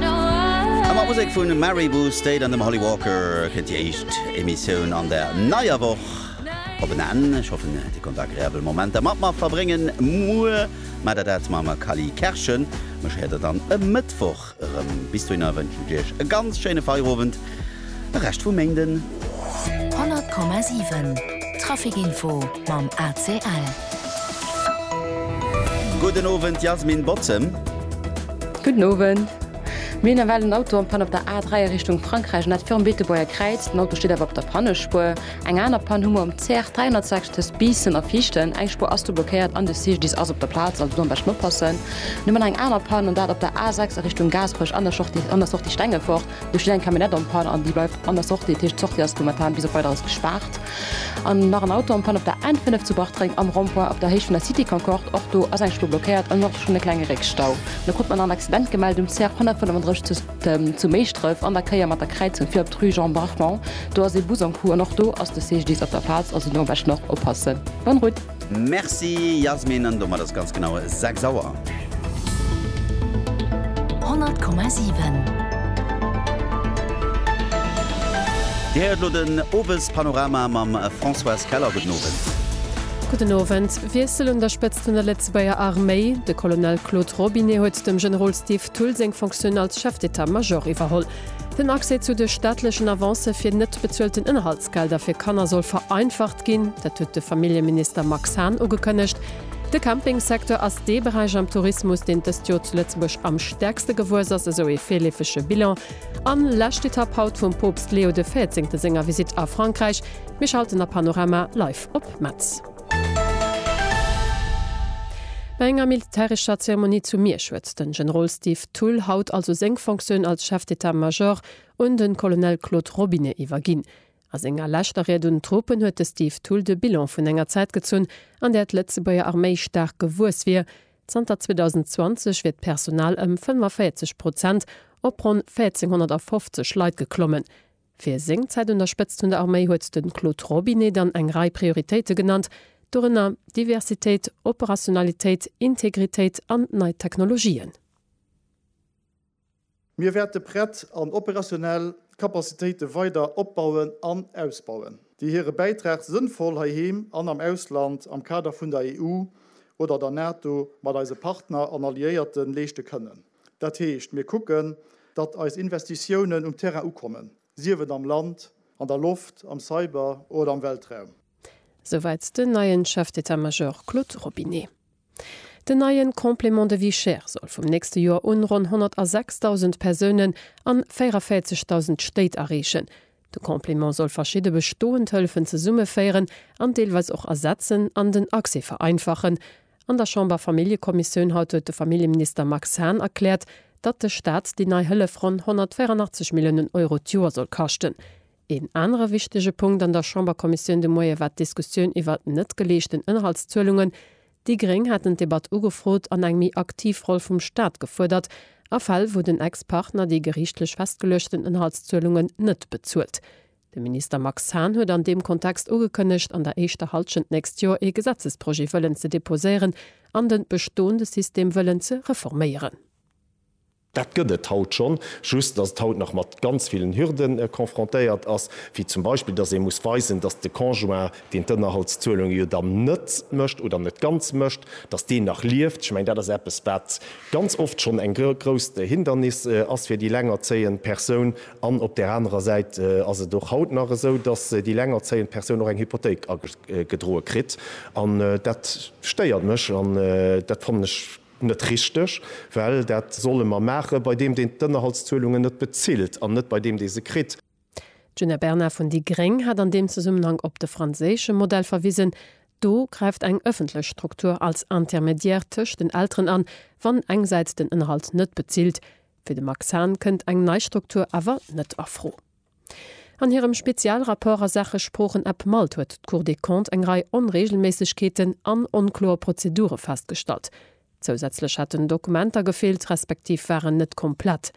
A mat Musek vun Mary Wu State an dem Holly Walker kënnt déi éischt Emissioun an der neier Woch op en Enn. Ech hoffen dir konnt agreabel Momenter mat mer verbréngen. Muer maacht der dat mam Kally Kerschen. Mech héiert der dann e Mëttwoch erëm. Bis dohinner wënschen ech iech e ganz schéine Feierowend, e Rescht vum Méinden. 100,7 Trafic Info mam ACL. Gudden Owend Yasmin Bottem. Gudden Owend. Mir hunn ewell en Auto am Pann op der A3 a Richtung Frankräich, an dat virum Beetebuerger Kräiz. Den Auto steet awer op der Pannespuer. Eng aner Pann hu mer um CR 306 tëscht Biissen a Viichten. Eng Spuer ass do blockéiert an de CGDIS ass op der Plaz, also do am beschten oppassen. Mir hunn eng aner Pann, an dat op der A6 a Richtung Gaasperech an der Sortie Stengefort. Do steet eng Camionnette en panne an déi bleift an der Sortie. Dat heescht, d'Sortie ass momentan bis op Weideres gespaart. An nach en Auto en panne op der N5 zu Bartreng am Rond-point op der Héicht vun der Cité Concorde. Och do ass eng Spur blockéiert an och schonn e klenge Réckstau. Da krut mer nach en Accident gemellt um CR 135 zu Méischdref an der Kéier mat der Kräizung vir op d'Rue Jean Brachmond. Do ass ee Bus en coup an och do ass de CGDIS op der Plaz. Also do am beschten och oppassen. Bonne route! Merci Yasmin, an domat ass ganz genau 6 Auer. 100,7. Dir héiert elo den Owespanorama mam Françoise Keller. Gudden Owend. Gudden Owend. Wiessel un der Spëtzt vun der Lëtzebuerger Arméi, De Colonel Claude Robinet huet dem Generol Steve Thull seng Fonctioun als Chef d'état-major iwwerholl. Den Accès zu de staatlechen Avancë fir net bezuelten Ënnerhalt. D'Gelder fir Kanner soll vereinfacht ginn, dat huet de Familljeminister Max Hahn ugekënnegt. De Campingsecteur ass dee Beräich am Tourismus, deen dëst Joer zu Lëtzebuerg am stäerkste gewuess ass, esou ee virleefege Bilan. An lescht Etapp haut vum Poopst Leo de Véierzéngte senger Visitt a Frankräich. Mir schalten a Panorama live op Metz. Bei enger militärescher Zeremonie zu Miersch huet den Generol Steve Thull haut also seng Fonctioun als Chef d'état-major un de Colonel Claude Robinet iwwerginn. A senger leschter Ried un d'Truppen huet de Steve Thull de Bilan vun enger Zäit gezunn, an där d'Lëtzebuerger Arméi staark gewuess wier. Zanter 2020 wier d'Personal ëm 45 Prozent op ronn 1.450 Leit geklommen. Fir seng Zäit un der Spëtzt vun der Arméi huet de Claude Robinet dann eng Rei Prioritéite genannt, dorënner Diversitéit, Operationalitéit, Integritéit an nei Technologien. Mir wäerte prett an operationell Kapazitéite weider opbauen an ausbauen, déi hire Bäitrag sënnvoll heiheem an am Ausland am Kader vun der EU oder der NATO mat eise Partner an Alliéierte leeschte kënnen. Dat heescht, mir kucken, datt eis Investitiounen um Terrain ukommen, sief et am Land, an der Loft, am Cyber oder am Weltraum. Souwäit den neien Chef d'état-major Claude Robinet. Den neien Complément de vie chère soll vum nächste Joer un ronn 106.000 Persounen an 44.000 Stéit erreechen. De Complément soll verschidde bestoend Hëllefen zesummeféieren an deelweis och ersetzen an den Accès vereinfachen. An der Chamber-Familljekommissioun haut huet de Familljeminister Max Hahn erkläert, datt de Staat déi nei Hëllef ronn 184 Milliounen Euro d'Joer soll kaschten. Een anere wichtege Punkt an der Chamberkommissioun de Moie war d'Diskussioun iwwert net geleeschten Ënnerhaltszuelungen. Déi Gréng haten d'Debatt ugefrot an eng méi aktiv Roll vum Staat gefuerdert a Fäll, wou den Ex-Partner déi geriichtlech festgeluechten Ënnerhaltszuelungen net bezuelt. De Minister Max Hahn huet an deem Kontext ugekënnegt, an der éischter Hallschent nächst Joer ee Gesetzesprojet wëllen ze deposéieren an de bestoende System wëllen ze reforméieren. Dat gëtt et haut schonn, just datt et haut nach mat ganz villen Hürde confrontéiert ass, wéi zum Beispill, datt ee muss weisen, datt de Conjoint, deen d'Ënnerhaltszuelunge jo dann net mécht oder net ganz mécht, datt deen nach lieft. Ech mengen, dat ass eppes, wat ganz oft schonn eng grousst Hindernis ass fir déi lengerzéiend Persoun. An op där anerer Säit ass et och haut nach esou, datt déi lengerzéiend Persoun och eng Hypothéik agedroe kritt. An dat stéiert mech an dat fannen ech Net richteg, well dat solle mer maache bei deem, deen d'Ënnerhaltszuelungen net bezilt, an net bei deem, dee se kritt. D'Djuna Bernard vun déi gréng hat an deem Zesummenhang op de franséische Modell verwisen. Do gräift eng ëffentlech Struktur als Intermédiaire tëscht den Elteren an, wann engsäits den Ënnerhalt net bezilt. Fir de Max Hahn kënnt eng nei Struktur awer net a Fro. An hirem Spezialrapport a Saache Sproochenapp malt huet d'Cour des Comptes eng Rei Onreegelméissegkeeten an onkloer Prozedure festgestallt. Zousätzlech hätten Dokumenter gefeelt, respektiv waren net komplett.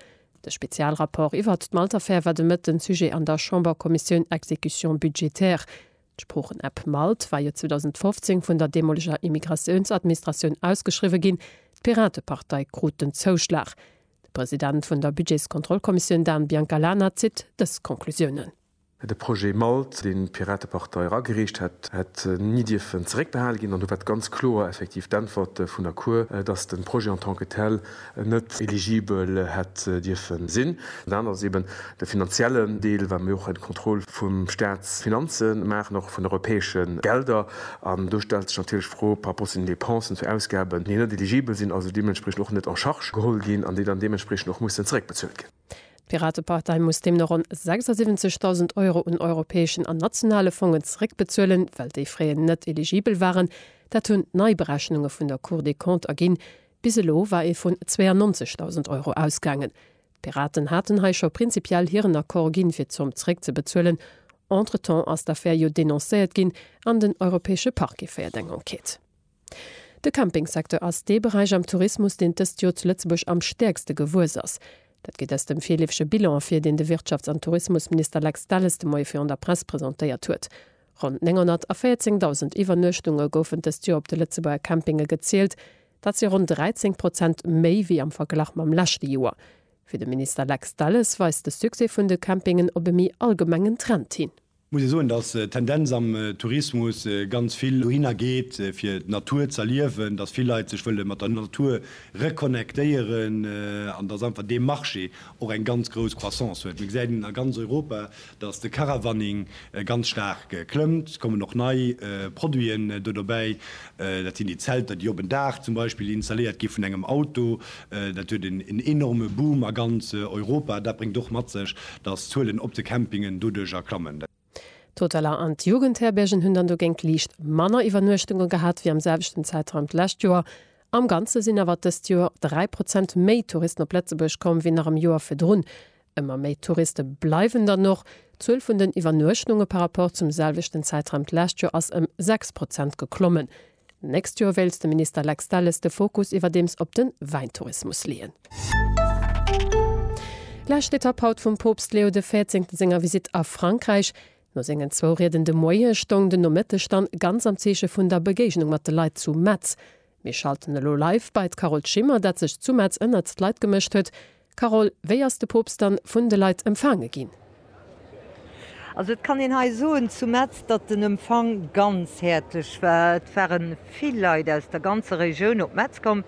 De Spezialrapport iwwert d'Malt-Affär war de Mëtten Sujet an der Chamberkommissioun Exécution budgétaire. D'Sproochenapp malt war jo 2015 vun der deemoleger Immigratiounsadministratioun ausgeschriwwe ginn. D'Piratepartei krut den Zouschlag. De President vun der Budgetskontrollkommissioun Dan Biancalana zitt dës Konklusiounen. De Projet MALT, deen d'Piratepartei eragereecht hätt, hätt ni dierfen zeréckbehale ginn. An do war d'ganz kloer effektiv d'Äntwert vun der Cour, datt de Projet en tant que tel net eligibel hätt dierfe sinn. Dat ass eeben De finanziellen Deel, well mir och eng Kontroll vu Staatsfinanze maachen, och vun europäesche Gelder. An do stellt sech natierlech d'Fro par rapport zu den Dépensen, zu Ausgaben, déi net eligibel sinn, also deementspriechend och net en charge geholl ginn an déi dann deementspriechend och mussen zeréckbezuelt ginn. D'Piratepartei muss deemno ronn 76.000 Euro un europäeschen an nationale Fongen zeréckbezuelen, well déi fréier net eligibel waren. Dat hunn nei Berechnunge vun der Cour des Comptes erginn. Bis elo war ee vun 92.000 Euro ausgaangen. D'Piraten haten hei scho prinzipiell hiren Accord ginn, fir d'Zomm zréckzebezuelen. Entretemps ass d'Affär jo denoncéiert ginn an den Europäesche Parquet féiert eng Enquête. De Campingsecteur ass dee Beräich am Tourismus, deen d'ëst Jor zu Lëtzebuerg am stäerkste gewuess ass. Dat geet aus dem virleefege Bilan ervir, deen de Wirtschafts an Tourismusminister Lex Delles de Moie virun der Press presentéiert huet. Ronn 914.000 Iwwernuechtunge goufen d'ëst Jor op de Lëtzebuerger Campinge gezielt, Dat si ronn 13 Prozent méi wéi am Verglach mam leschte Joer. Fir de Minister Lex Delles weist de Succès vun de Campingen op e méi allgemengen Trend hin. Muss ee soen, datt d'Tendenz am Tourismus ganz vill dohinner geet, fir d'Natur z'erliewen, datt vill Leit sech wëlle mat der Natur reconnectéieren an datt einfach dee Marché och eng ganz grouss Croissance huet. Mir gesäit een a ganz Europa, dass de Caravaning ganz staark klëmmt. Et kommen och nei Produiten do dobäi, dat sinn déi Zelter, déi op en Daach zum Beispill installéiert gi vun engem Auto. Dat huet en enorme Boom a ganz Europa. Dat bréngt och mat sech, dass d'Zuelen op de Campingen doduerjer klammen. D'Hoteller an d'Jugendherbergen hunn dann dogéint liicht manner Iwwernuechtunge gehat wéi am selwechten Zäitraum d'lescht Joer. Am Ganze sinn awer dëst Joer 3 Prozent méi Touristen op Lëtzebuerg komm wéi nach am Joer virdrun. Ëmmer méi Touriste bleiwen dann och. D'Zuel vun den Iwwernuechtnunge par Rapport zum selwechten Zäitraum d'lescht Joer ass ëm 6 Prozent geklommen. D'nächst Joer wéilt de Minister Lex Delles de Fokus iwwerdeems op de Wäintourismus leeën. Lescht Etapp haut vum Poopst Leo de Véierzéngte senger Visitt a Frankräich. No sengen zwou Rieden de Moie stoung den Nomëtteg dann ganz am Zeeche vun der Begéignung mat de Leit zu Metz. Mir schalten elo live bei d'Carole Schimmer, dat sech zu Metz ënnert d'Leit gemëscht huet. Carole, wéi ass de Poopst dann vun de Leit empfaange ginn? Also et kann een hei soen zu Metz, datt den Empfang ganz häerzlech war. Et ware vill Leit aus der ganzer Regioun op Metz komm,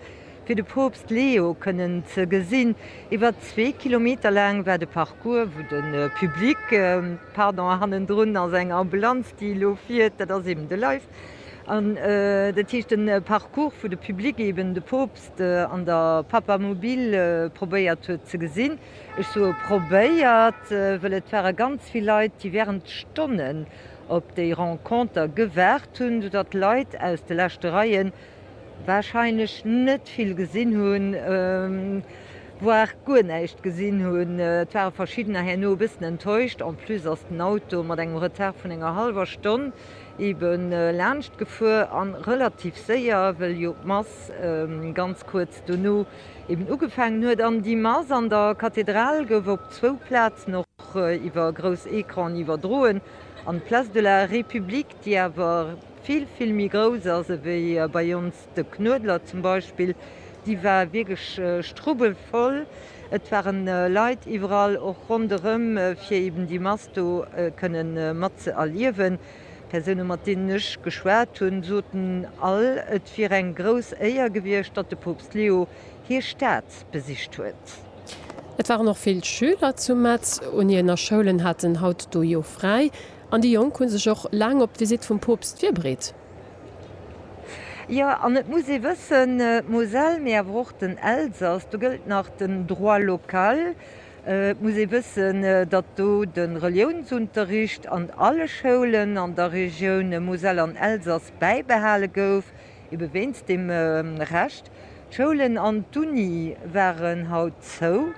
fir de Poopst Leo kënnen ze gesinn. Iwwer zwee Kilometer laang war de Parcours, wou de Public, pardon, hannendrun ass eng Ambulanz, déi elo fiert, dat ass eben de Live, An dat heescht de Parcours vu de Public eben de Poopst an der Papamobil probéiert huet ze gesinn. Ech soe probéiert, wëll et ware ganz vill Leit, déi während Stonnen op déi Renconter gewaart hunn, sou datt Leit aus de leschte Reien wahrscheinlech net vill gesinn hunn, voire guer näischt gesinn hunn. Et ware verschiddener herno e bëssen enttäuscht. En plus ass den Auto mat engem Retard vun enger hallwer Stonn eben laanscht gefuer an relativ séier, wëll jo d'Mass ganz kuerz dono eben ugefaangen huet. An déi Mass an der Kathedral gouf op zwou Plazen och iwwer grouss Ecranen iwwerdroen an d'Place de la République, déi awer vill, vill méi grouss ass ewéi bei ons, De Knuedler zum Beispill, déi war wierklech strubbelvoll. Et ware Leit iwwerall och ronderëm, fir eben déi Mass do kënne mat ze erliewen. D'Persoune mat deenen ech geschwat hunn, soten all, et wier eng grouss Éier gewiescht, datt de Poopst Leo hir Stad besicht huet. Et waren och vill Schüler zu Metz. Uniener Schoulen haten haut do jo fräi an déi Jonk hu sech och laang op d'Visitt vum Poopst virbereet. Jo, an et muss ee wëssen, d'Moselle, mee awer och den Elsass, do gëllt nach den Droit local. Et muss ee wëssen, datt do de Reliounsunterricht an alle Schoulen an der Regioun Moselle an Elsass bäibehale gouf, ebe wéinst deem Recht. D'Schoulen an d'Uni waren haut zou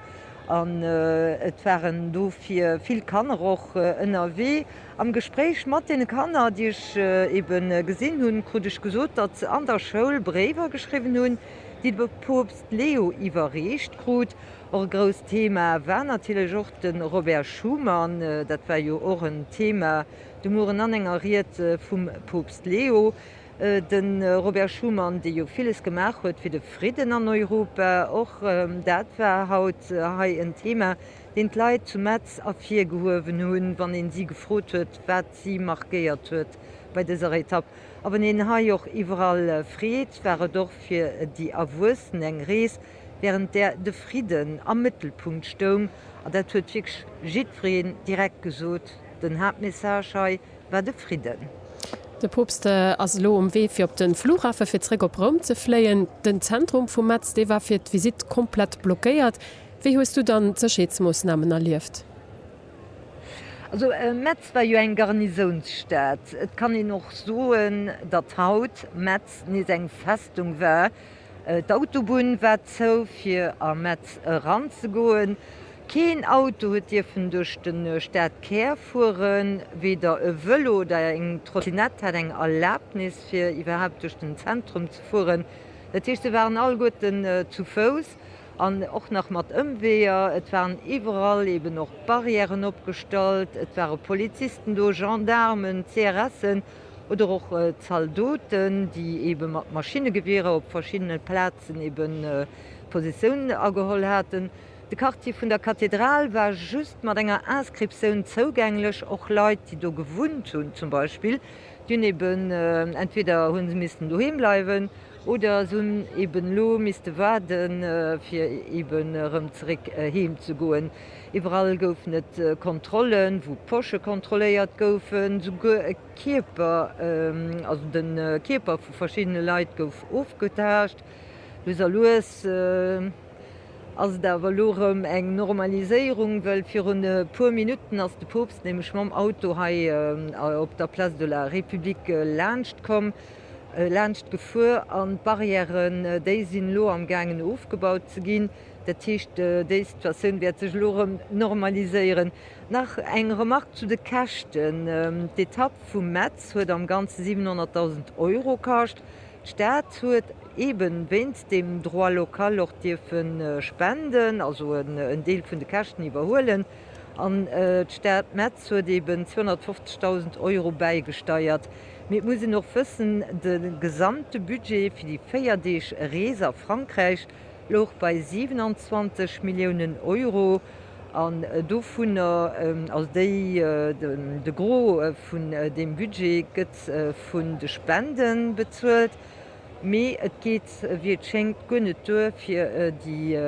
an et waren dofir vill Kanner och ënnerwee. Am Gespréich mat deene Kanner, déi ech ebe gesinn hunn, krut ech gesot, datt se an der Schoul Bréiwer geschriwwen hunn, déi de Poopst Leo iwwerreecht krut. Och e grousst Thema war natierlech och de Robert Schuman. Dat war jo och en Thema de Mueren an enger Ried vum Poopst Leo. De Robert Schuman, dee jo villes gemaach huet fir de Fridden an Europa, och dat war haut hei en Thema, deen d'Leit zu Metz ervirgehuewen hunn, wann ee si gefrot huet, wat si markéiert huet bei dëser Etapp. A wann een hei och iwwerall freet, war et och fir déi Erwuessen eng Rees, wärend där de Fridden am Mëttelpunkt stoung. An dat huet wierklech jiddwereen direkt gesot, den Haaptmessage hei. war de Fridden. De Poopst ass elo um Wee fir op de Flughafe fir zréck op Roum ze fléien. Den Zentrum vu Metz, dee war fir d'Visitt komplett blockéiert. Wéi hues du dann d'Sécherheetsmoossnamen erlieft? Also Metz war jo eng Garnisounsstad. Et kann een och soen, datt haut Metz nees eng Festung war. D'Autobunn war zou fir a Metz eran ze goen. Keen Auto huet dierfen duerch de Stadkär fueren. Weder e Vëlo oder eng Trottinett hat eng Erlabnis fir iwwerhaapt duerch den Zentrum ze fueren. Dat heescht, se waren alleguerten zu Fouss an och nach mat Ëmweeër. Et waren iwwerall eben och Barrièren opgestallt, et ware Polizisten do, Gendaarmen, CRSen. oder och Zaldoten, déi ebe mat Maschinnegewierer op verschiddene Plazen ebe Positioun ageholl haten. De Quartier vun der Kathedral war just mat enger Inscriptioun zougänglech. Och Leit, déi do gewunnt hunn zum Beispill, déi hunn ebe entweder hu se missten doheem bleiwen oder se hunn eben elo misste waarde fir eben erëm zeréck heem ze goen. Iwwerall goufen et Kontrollen, wou d'Posche kontrolléiert goufen, souguer e Kierper, also de Kierper vu verschiddene Leit gouf ofgetaascht. Lues a lues ass et awer elo erëm eng Normaliséierung, well virun e puer Minutten ass de Poopst nämlech mam Auto hei op der Place de la République laanschtkomm, laanschtgefuer an d'Barrièren, déi sinn elo am gaangen ofgebaut ze ginn. Dat heescht, déi Situatioun wäert sech elo erëm normaliséieren. Nach eng Remark zu de Käschten, D'Etapp vu Metz huet am Ganze 700.000 Euro kascht. D'Stad huet eebe wéinst dem Droit local och dierfe spenden, also en Deel vun de Käschten iwwerhuelen. An d'Stad Metz huet eebe 250.000 Euro bäigesteiert. Mee et muss een och wëssen, de gesamte Budget fir déi véier Deeg Rees a Frankräich louch bei 27 Milliounen Euro an dovunner, also déi, de Gros vun deem Budget gëtt vun de Spende bezuelt, mee et geet, wéi et schéngt, guer net duer, fir déi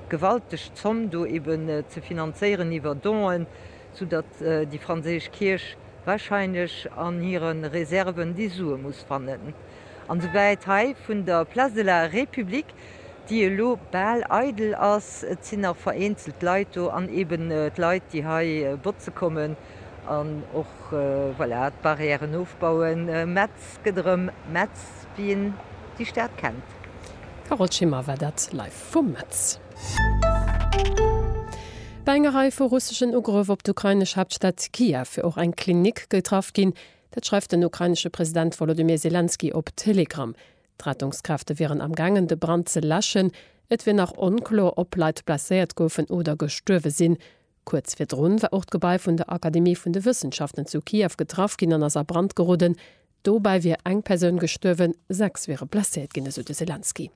gewalteg Zomm do eben ze finanzéieren iwwer Donen, soudatt déi franséisch Kierch warscheinlech an hire Reserven déi Sue muss fannen. An souwäit hei vun der Place de la République, déi elo bal eidel ass. Et sinn nach vereenzelt Leit do an eben d'Leit, déi hei botze kommen an och, voilà, d'Barrièren ofbauen. Metz gëtt erëm Metz, wéi een déi Stad kennt. Carole Schimmer war dat live vu Metz. Bei enger Rei vu russeschen Ugrëff op d'ukrainesch Haaptstad Kiew wier och eng Klinik getraff ginn. Dat schreift den ukrainesche President Wolodymyr Selenskyj op Telegram. D'Rettungskräfte wieren am gaangen de Brand ze läschen. Et wier nach onklo, ob Leit blesséiert goufen oder gestuerwe sinn. Kuerz virdrun war och d'Gebai vun der Akademie vun de Wëssenschaften zu Kiew getraff ginn an ass a Brand geroden. Dobäi wier eng Persoun gestuerwen, sechs wiere blesséiert ginn, esou de Selenskyj.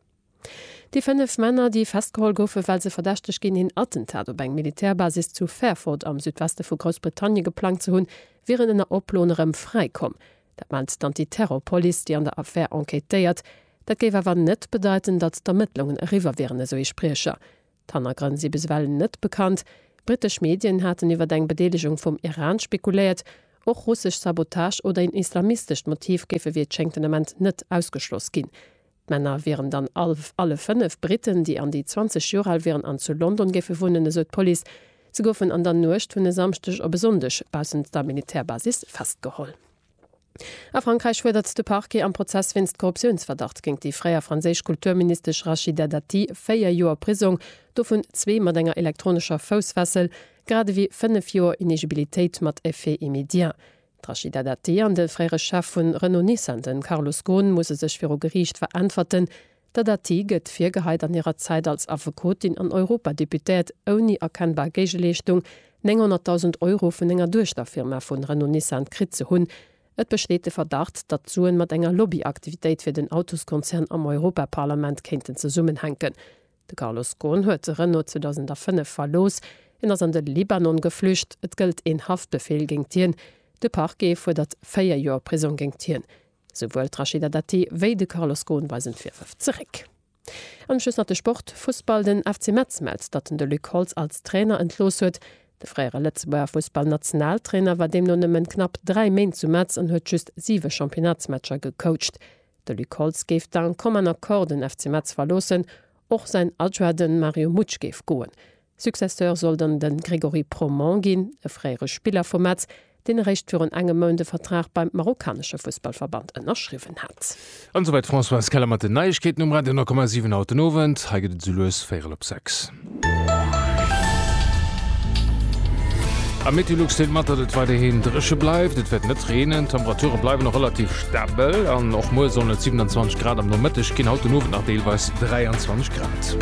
Déi fënnef Männer, déi festgeholl goufen, well se verdächteg ginn, een Attentat op eng Militärbasis zu Fairford am Südweste vu Groussbritannien geplangt ze hunn, wieren ënner Oploen erëm fräi komm. Dat mellt d'Antiterrorpolice, déi an der Affär enquêtéiert. Dat géif awer net bedeiten, datt d'Ermëttlungen eriwwer wieren, esou ee Spriecher. D'Hannergrënn si bis ewell net bekannt. Brittesch Medien haten iwwer eng Bedeelegung vum Iran spekuléiert. Och russesch Sabotage oder een islamistescht Motiv géife wéi et schéngt den Ament net ausgeschloss ginn. D'Männer wieren dann all alle fënnef Britten, déi an déi 20 Joer al wieren an zu London géife wunnen, esou d'Police. Se goufen an der Nuecht vun e Samschdeg op e Sonndeg baussent der Militärbasis festgeholl. A Frankräich fuerdert de Parquet am Prozess wéinst Korruptiounsverdacht géint déi fréier franséisch Kulturministesch Rachida Dati véier Joer Prisong, dovun zwee mat enger elektronescher Foussfessel, grad ewéi fënnef Joer Inegibilitéit mat Effet immédiat. D'Rachida Dati an de fréiere Chef vun Renault-Nissan, de Carlos Ghosn, musse sech viru Geriicht veräntwerten. Der Dati gëtt virgeheit, an hirer Zäit als Affekotin an Europadeputéiert ouni erkennbar Géigeleeschtung 900.000 Euro vun enger Duechterfirma vu Renault-Nissan kritt ze hunn. Et besteet de Verdacht, datt d'Suen mat enger Lobbyaktivitéit fir den Autoskonzern am Europaparlament kéinten zesummenhänken. De Carlos Ghosn huet de Renault 2005 verlooss. Hien ass an de Libanon geflücht. Et gëllt een Haftbefeel géingt hien. De Parquet fuerdert véier Joer Prisong géingt hien. Souwuel d'Rachida Dati wéi de Carlos Ghosn weisen d'Virwërf zeréck. An um Schluss nach de Sport, Fussball, Den FC Metz mellt, datt en de Luc Holtz als Trainer entlooss huet. De fréiere Lëtzebuerger Fussballnationaltrainer war deemno nëmmen knapp dräi Méint zu Metz an huet just siwe Championnatsmatcher gecoacht. De Luc Holtz géif d'un commun accord den FC Metz verloossen, och säin Adjoint de Mario Mutsch géif goen. Successeur soll dann de Grégory Proman ginn, e fréiere Spiller vu Metz, deen eréischt virun engem Mount e Vertrag beim marokkanesche Fussballverband ënnerschriwwen hat. An esouwäit d'Françoise Keller mat den Neiegkeeten um Radio 9,7. Haut den Owend, hei gëtt et esou lues véierel op sechs. Am Meteolux deelt mat, datt et weiderhin dréche bleift. Et wäert net reenen, d'Temperature bleiwen och relativ stabel an och muer sollen et 27 Grad am Nomëtteg ginn, haut den Owend nach deelweis 23 Grad.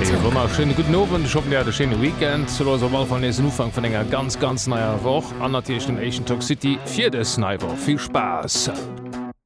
Ee wonnerschéine gudden Owend, ech hoffen, Dir hat e schéine Weekend. Zu Louis op all Fall nees den Ufank vun enger ganz, ganz neier Woch an natierlech dem éischten Talk City fir dës nei Woch. Vill Spaass!